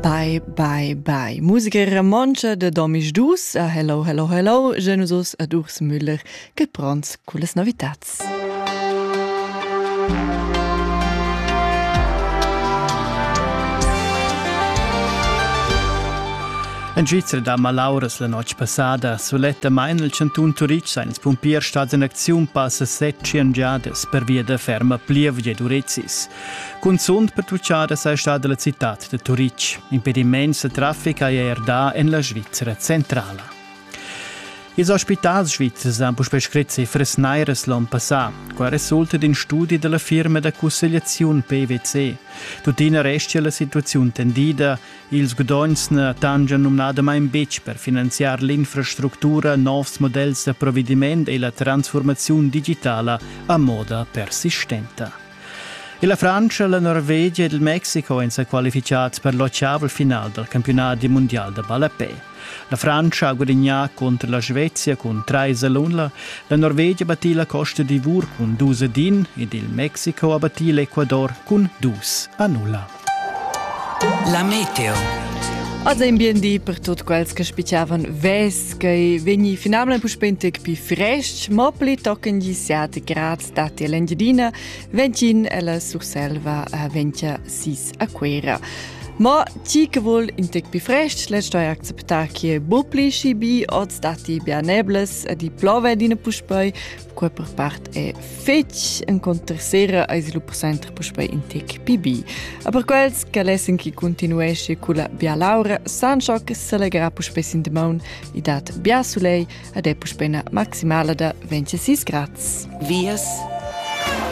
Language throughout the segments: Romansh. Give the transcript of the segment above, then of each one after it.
Bye, bye, bye. Musica romontscha da domisdus. Ah, hello, hello, hello. Je nous os ad Urs Müller, che pronts con les novitats. En Svizra da malauras la notg passada sulettamain il cantun Turitg sa ins pumpier stads en acziun passa set giadas per via da ferma plievgia d'urezis. Cunzunt pertutgada sei stada la citad de Turitg. Impediments de traffic hai er da en la Svizzera centrala. Ils ospitals svizzers han puspè scrit cifras nairas l'on passà. Qua resulta in studi della firma da cussegliaziun PwC. Tuttina restia la situaziun tendida, ils guadogns na tangian numnadamain betg per finanziar l'infrastructura, novs modells da provvediment e la transformaziun digitala a moda persistenta. La Frantscha, la Norvegia ed il Mexico èn sa qualificads per l'ottavel final dal campiunadi mundial da ballapè. La Frantscha ha gudagnà contro la Svezia cun 3 all'unla, la Norvegia battì la Costa d'Ivor cun 2 ad 1 ed il Mexico ha battì l'Ecuador cun 2 a 0. La meteo. Az ein bien di per tutti quels che spicavan vesca e vegni finalmente puspei tec più fresc, ma pli tochen gisiate grad dati l'Engiadina, ventgin alla Surselva a ventia sis a Quera. Ma ti che vuol in tec più fresc, le stoi acceptare che bu pli si bi oz dati bianebles e di plove dina puspei, Qua per part è fetg encunter sera ais lu presenter puspei in tec pibi. A per quels che lessen chi continuesce culla bia laura, san ciò che s'allegra puspei sin de maun e dat bia sulei ad è puspei na maximala da 26 grads. Vias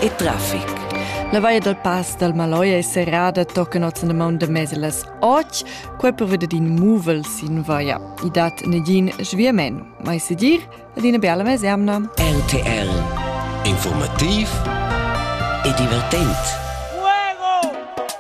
e traffic. La vaia dal Pass dal Maloia è serrada tocca notzen de maun de meselas och, quai per veder din muvel sin vaia. I dat negin sviamen. Mai se dir, ed ina bella mesemna. RTL Informativ e divertent.